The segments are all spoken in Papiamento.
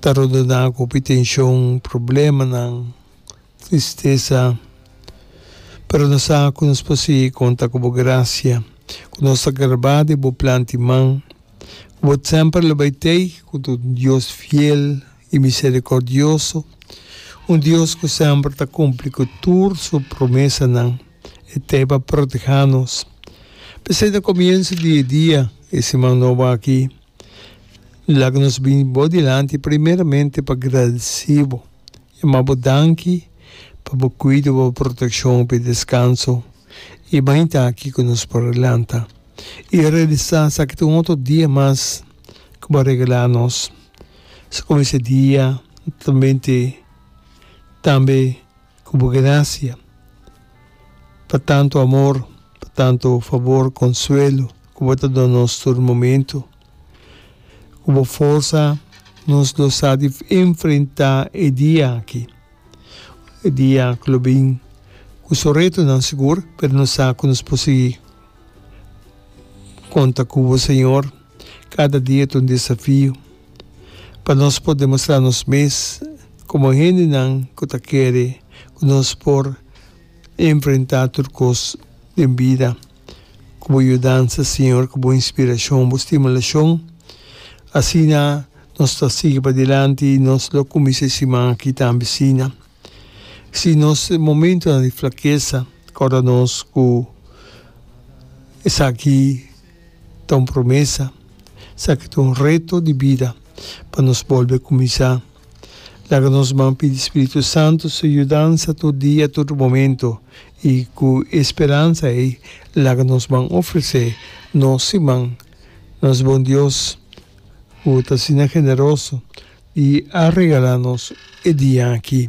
Ta rodená ku hopi tenshon, problemanan, tristesa. Pero nos sa ku nos por sigui konta ku bo grasia, ku nos ta garbá den bo plan di man, ku bo semper lo bai tei, ku bo ta un Dios fiel i miserikordioso, un Dios ku semper ta kumpli ku tur su promesanan. E tei pa protehá nos. P'esei ta komienso di e dia, e siman nobo akí. Laga nos bini bo dilanti primeramente pa gradesí bo i mabo danki pa bo kuido, bo protekshon hopi deskanso i mainta aki ku nos por lanta i realisá esaki ta un otro dia mas ku bo a regalá nos. Esei komo ese dia ta tambe. ku bo grasia, pa tantu amor, pa tantu fabor, konsuelo ku bo ta duna nos tur momentu, ku bo forsa nos lo sa di enfrentá e dia aki, e dia ku lo bin ku su retonan sigur, pero nos sa ku nos por sigui konta ku bo, Señor. Kada dia ta un desafio pa nos por demostrá nos mes komo hendenan ku ta kere ku nos por enfrentá tur kos den bida. Ku bo yudansa, Señor, ku bo inspirashon, bo stimulashon, asina nos ta sigui padilanti i nos lo kuminsá e siman aki tambe asina. Si nos momentunan di flakesa, kòrda nos ku esaki. ta un promesa, esaki ta un reto di bida pa nos bolbe kuminsá. Laga nos man pidi Spiritu Santu su yudansa tur dia, tur momentu, i ku e speransa ei laga nos man ofresé nos siman na nos bon Dios ku ta asina generoso di a regalá nos e dia aki.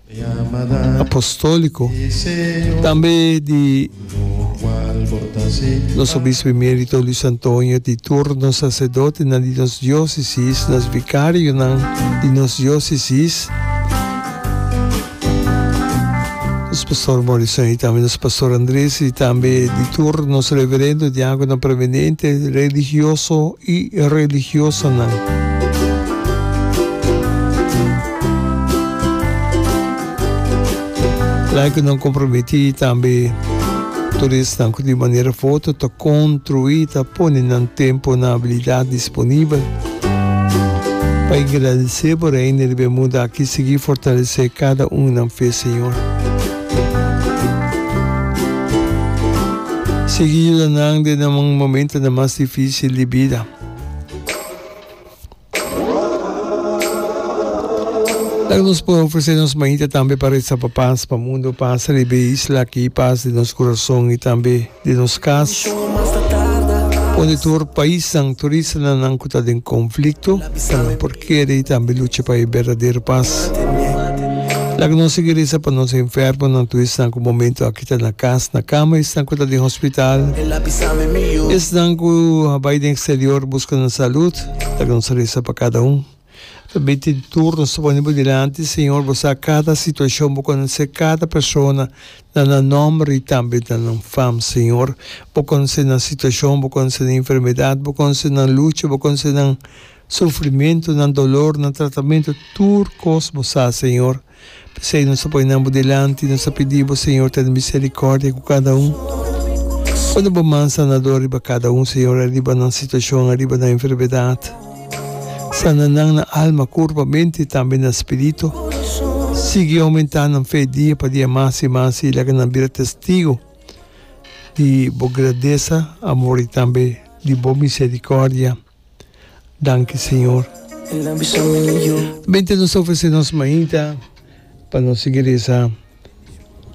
Apostóliko, tambe di nos Obispo Emérito Luis Antonio, di tur nos Saserdotenan di nos Diósesis, nos Vikarionan di nos Diósesis, nos Pastor Morrison i tambe nos Pastor Andrés, i tambe di tur nos Reverendo, Diákonan Preeminente, religioso i religiosanan. Like nan komprometí tambe turisnan ku di manera foto ta kontruí ta pone nan tempu na abilidat disponibel pa engradesé bo Reino di Bermuda aki sigui fortalesé kada un di nan fe Señor. Sigui yuda nan den nan momentunan mas difísil di bida. Laga nos por ofresé nos mainta tambe pa retsa pa pas, pa mundu pas riba e isla aki, pas di nos kurason i tambe di nos kas, onde tur paisnan, tur islanan nan ku ta den konflikto ta nan por keda i tambe lucha pa e berdadero pas. Laga nos sigui resa pa nos enfermonan, tur esnan ku momentu aki. i ta na kas na kama, esnan ku ta den hospital, esnan ku a bai den eksterior buska nan salud, ta nos resa pa kada un. Ta binti di tur nos ta pone bo dilanti, Señor, bo sa kada situashon, bo konosé kada persona na nan nòmber i tambe na nan fam, Señor. Bo konosé nan situashon, bo konosé nan enfermedat, bo konosé nan lucha, bo konosé nan sufrimentu, nan dolor, nan tratamentu, tur kos bo sa, Señor. P'esei nos a poi nan bo dilanti, nos a pidi bo, Señor, tene misericordia cu cada un. Pone bo man sanador riba cada un, Señor, ariba nan situacion, ariba nan enfermedad. Sana nan na alma, curpa, mente y tambe na spirito. Sigui aumenta nan fe dia pa dia mas y mas y laga nan bira testigo di bo grandeza, amor y tambe di bo misericordia. Danki Señor. Bende nos ta ofresé nos mainta pa nos sigui resa.